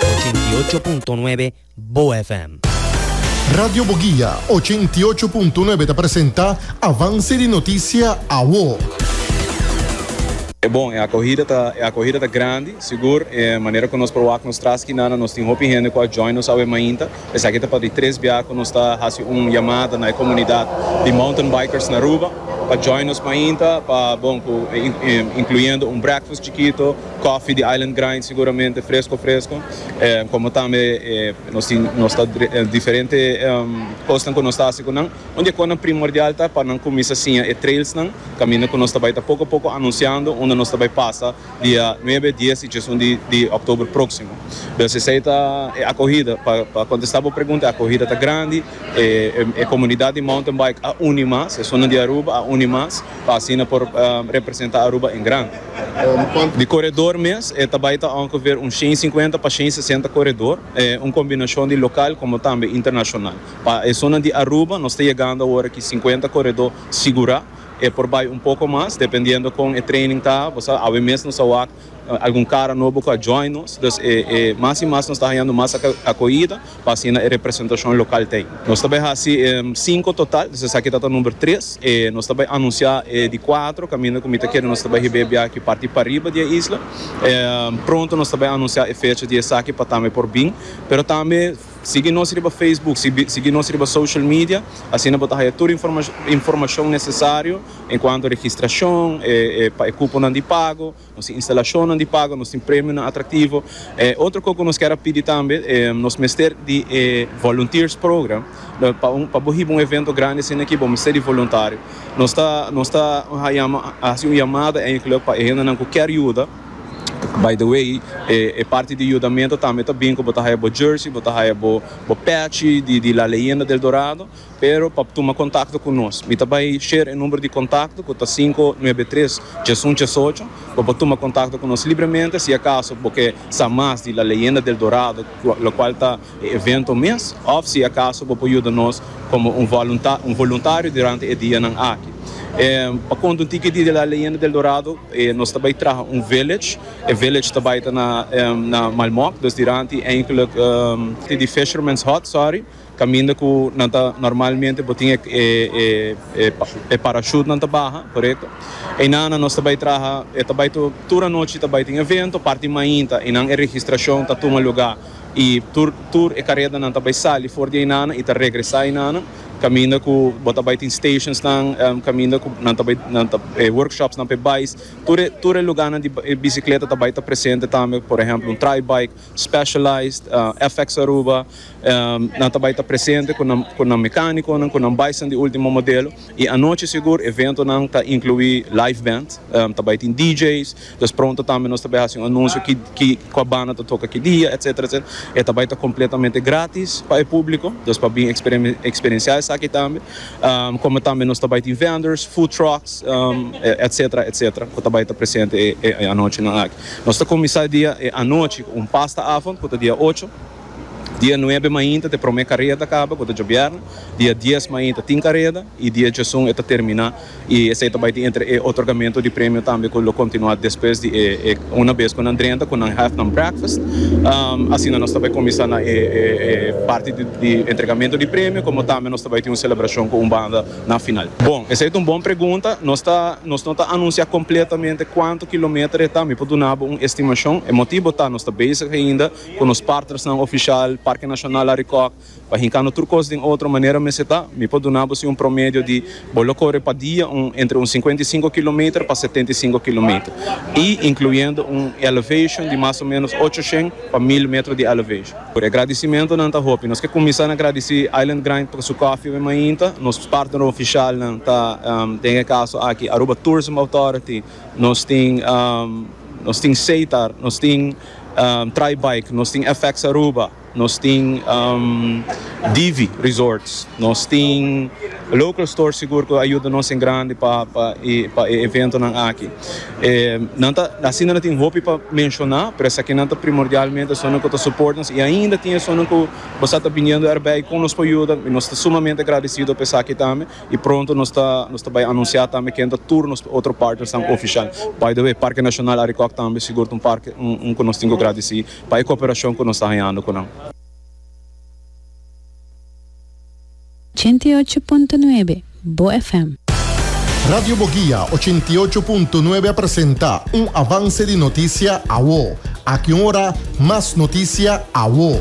Ochenta i ocho punto nuebe Bo FM. Radio Boguia ochenta i ocho punto nuebe ta presenta Avance di Noticia Awo. E bon, e akohida ta e akohida ta grandi, sigur, e manera ku nos por wak nos tras skinan, nos tin hopi hende ku a join nos awe mainta. Esaki ta pa di tres bia ku nos ta hasi un yamada na e komunidat di Mountain Bikers na Aruba pa join nos mainta pa bon ku inkluyendo un breakfast chikito, kòfi di Island Grind siguramente fresko fresko, komo tambe nos tin nos ta diferente kosnan ku nos ta hasi ku nan. Un di e kosnan primordial ta pa nan kuminsa siña e trailsnan kaminda ku nos ta bai ta poko poko anunsiando unda nos ta bai pasa. dia nuebe, dies i diesun di òktober próksimo. Dòs esei ta e akohida. Pa pa kontestá bo pregunta, e akohida ta grandi. E e komunidat di mountain bike a uni mas, e zonan di Aruba a uni mas pa asina por representá Aruba en grandi. Di koredor mes e ta bai ta òngeveer un shen i sinkuenta pa shen i sesenta koredor, un kombinashon di lokal komo tambe internashonal. Pa e zonan di Aruba nos ta yegando awor aki sinkuenta koredó sigurá. E por bai un poko mas dependiendo kon e training ta. Bo sa awe mes nos a wak algun kara nobo ku a join nos. Dus e e mas i mas nos ta hañando mas akohida pa asina e representashon lokal ta ei. Nos ta bai hasi sinku total, dus esaki ta ta number tres. E nos ta bai anunsiá e di kuatro kaminda ku mi ta kere nos ta bai hib'é biaha parti pariba di e isla. Pronto nos ta bai anunsiá e fecha di esaki pa tambe por bin, pero tambe. Sigui nos riba Facebook, sigui nos riba social media, asina bo ta haya tur informashon nesesario enkuanto registrashon, pa e kuponan di pago, nos tin instalashonnan di pago, nos tin premionan atraktivo. Otro kos ku nos kier a pidi tambe, nos mester di e volunteers program, pa bo hiba un evento grandi asina aki bo mester di voluntario. Nos ta hasi un yamada e enkele pa e hendenan ku kier yuda. By the way, e parti di yudamento tambe ta bin ku bo ta haya bo jersey, bo ta haya bo patchy di La Leyenda del Dorado, pero pa tuma kontakto ku nos, mi ta bai share e number di kontakto ku ta sinku nuebe tres tres un tres ocho, bo por tuma kontakto ku nos libremente si akaso bo ke sa mas di La Leyenda del Dorado, lokual ta. e evento mes òf si akaso bo por yuda nos komo un voluntario durante e dianan aki. Pa konta un tiki di La Leyenda del Dorado nos ta bai traha un village, e village ta bai ta na Malmok, dus diranti eindelijk ti di Fisherman's Hut, sorry, kaminda ku nan ta normalmente bo tin e parachute nan ta baha, korekto? Einan nan nos ta bai traha, e ta bai tur anochi ta bai tin evento, parti mainta einan e registrashon ta tuma lugá. I tur tur e karedanan ta bai sali for di Ainana i ta regresá Ainana, kaminda ku bo ta bai tin stationsnan, kaminda ku nan ta bai nan ta e workshopsnan p'e bais, tur e tur e lugánan di e bisikleta ta bai ta presente tambe, por ehèmpel un Tri-Bike, Specialized, FX Aruba, nan ta bai ta presente ku nan ku nan mekánikonan, ku nan baisnan di último modelo, i anochi sigur eventonan ta inkluí live band, ta bai tin DJ's, Pues pronto tambe nos ta bai haci un anuncio ki cua banda ta toca ki dia etc. E ta bai ta completamente gratis pa e publico, pues pa bin experiencia esaki tambe. Como tambe nos ta bai tin vendors, food trucks etc. Etc. Cu ta bai ta presente e anochinan aki. Nos ta cuminsa e dia e anochi cu un pasta avond cu ta dia ocho. Dia nuebe mainta ta e promé kareda kaba, ku ta djobièrna. Dia dies mainta tin kareda, i dia djesun e ta terminá. I esei ta bai tin entre e otorgamentu di premio tambe ku lo kontinuá despues di e e una bes ku nan drenta, ku nan hèf nan breakfast. Asina nos ta bai kuminsá na e e e parti di di entregamentu di premio, komo tambe nos ta bai tin un selebrashon ku un banda na final. Bon, esei ta un bon pregunta. Nos ta nos no ta anunsiá kompletamente kuantu kilometer e ta. Mi por duna bo un estimashon. E motibu ta nos ta bezig ainda. cu nos partnersnan oficial, Parque Nacional Arikok, pa hincando tur cos den otro manera mester ta, mi por duna bo si un promedio di bo lo core pa dia un entre un cincuenta y cinco kilometer pa setenta y cinco kilometer y incluyendo un elevation di mas o menos ochocientos pa mil metro di elevation. Por e gradicimentonan ta hopi. Nos ke cuminsa na gradici Island Grind pa su coffee wen mainta, nos partner oficialnan ta den e caso aki Aruba Tourism Authority, nos tin nos tin Seitar, nos tin. Try Bike, nos tin FX Aruba, nos tin Divi Resorts, nos tin local stores sigur cu a yuda nos en grandi pa pa e eventonan aki. Nan ta, asina nan tin hopi pa menciona, pero esakinan ta primordialmente esunnan cu ta support nos y ainda tin esunnan cu bo sa ta biniendo erbij con nos por yuda y nos ta sumamente agradecido pa esaki tambe. Y pronto nos ta nos ta bay anuncia tambe ken ta tur nos otro partnersnan oficial. By the way, Parque Nacional Arikok tambe sigur ta un parke un cu nos tin cu gradici pa e cooperacion cu nos ta hañando cu nan. Ochenta i ocho punto nuebe, Bo FM. Radio Boguia ochenta i ocho punto nuebe a presenta un avance di noticia awo. Aki un ora mas noticia awo.